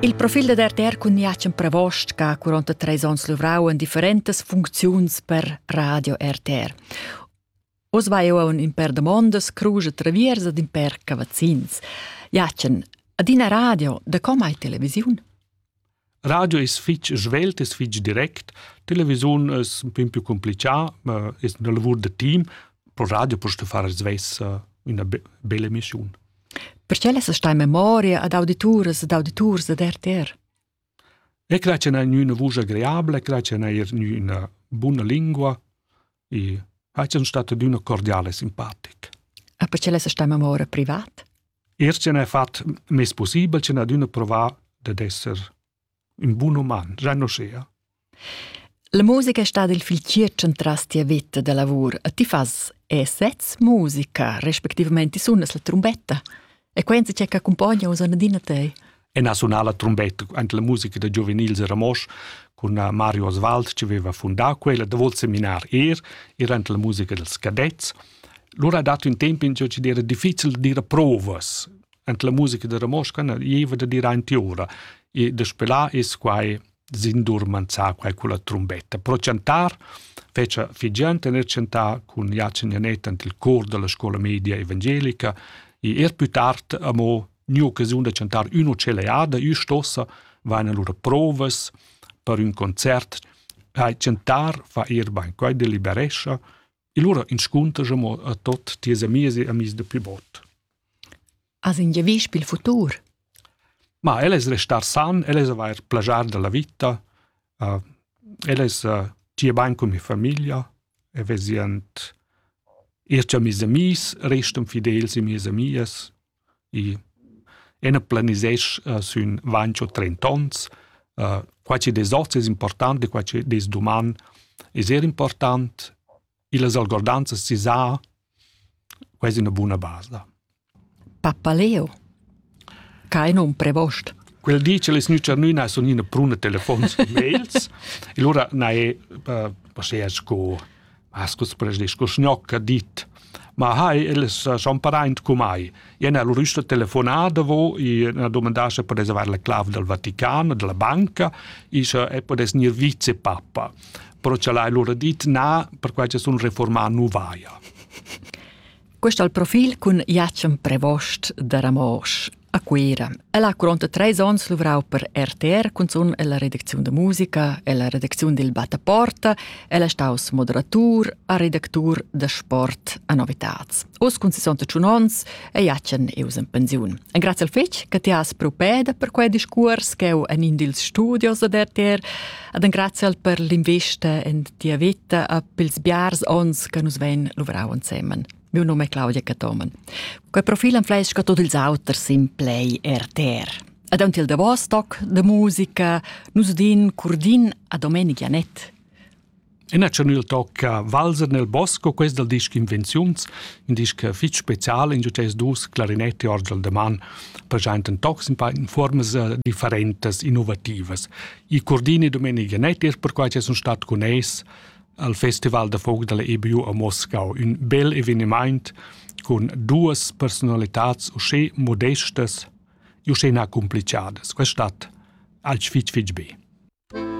Il profil da RTR cun Jacen Pravost che ha 43 onns luvrau en differentas funcziuns per Radio RTR. Oz vai eu un in per domondas, cruge traviers ed in per cavazzins. Jacen, ad ina radio, da com hai televisiun? Radio es fich svelt, es fich direct, televisiun es ün pin più complichà, ma es üna lavur da team. Pro radio post far svess üna bella emissiun. Perché lessa sta in memoria ad audituras ed auditurs ed RTR? E cre che n'ha üna vusch agreabile, cre che n'ha eir üna buna lingua, e ha gian stat adüna cordiale simpatic. Ah, perché l'es sta memoria privat? Er ce n'è fat mes possibel ce n'ha adüna provà dad esser un bun uman, già no schea. La musica è stata il fil circen tras tia vita da lavur. E ti fas e sez musica, respectivamente sunas la trombetta? E quenza che accumpogna uss adina te. E na sunala trombetta ante la musica da giuvenils a Ramosch cun Mario Oswald che aveva fundato quella da vol seminar er ir ante la musica dels cadets. Lura ha dato un tempo in ciò che era difficile di dire provas ante la musica da Ramosch, che eva da dire anti ora. E de spelar es quai sin dur manzar quai culla trumbetta. Pro chantar fece figiant e chantar cun Jacin Janet ant il cor della scuola media evangelica e er più tard amo new occasiun da chantar uno celeada ü stossa vaina lura provas per ün concert hai chantar fa er bain quai deliberescha E lura inscunter mo a tot ties amis e amis de pli bot. As in giavisch pil futur? Ma el es restar san, el es avair plagiar della vita, uh, el es uh, tie bain con mi familia, e vesient ir amis amis, restan fidels e mies amias, I ena planisesch uh, sün vancho trent'ons. Uh, quai chi des hoz es important e quai chi des duman es eir important. Illas algordanzas si sa quasi una buna base da. Papaleo. Kein unprevost. Quel dice les nücernüna sun ina pruna telefons e mails. e lura na è uh, posea sco Has culs presnis co sgnocca dit. Ma hai, el sa champaraint cu mai. Ien al rüsta telefonà davo, i ha domandasse per reservar la clav dal Vatican, della banca, ischa e podes gnir vicepapa. Però cha l'hai lura dit na, perquai cha sun reformà nu vaia. Quest al profil cun Jacem Prevost da Ramosch a Cuira. El ha curonta treis onns luvrau per RTR cunzun ella redacziun da musica e la redacziun dil Bataporta. El è staus moderatur a redactur da sport a Novitats. Oz cun 61 onns è Jacen eus in pensiun. En grazie al fetg che ti has propeda per quei discurs che eu en in dils studios ad RTR, ad en grazie al per l'investa en Tia vita a pils biars ons che nus vein luvrau ensemen. Miu num è Claudia Catomen. Quei profil enfleisca tot ils auters in play RTR. Ad aunc il davos toc de musica nus din curdin a Domenig Janet. In acciunil tocca Valser nel bosco, quest dal disc Invenziuns, in disc fitg special in giutais dus clarinetti orgel de man, presenta tocs in paar formas eh, differentas, innovativas. Il Cordini Domenica Nettis perquai che sun stat cun eis al Festival da folk dalla EBU a Moscau, un bel eveniment con duas personalitats usche modestas e usche na complicadas. Questa stat alch fitch fitch be.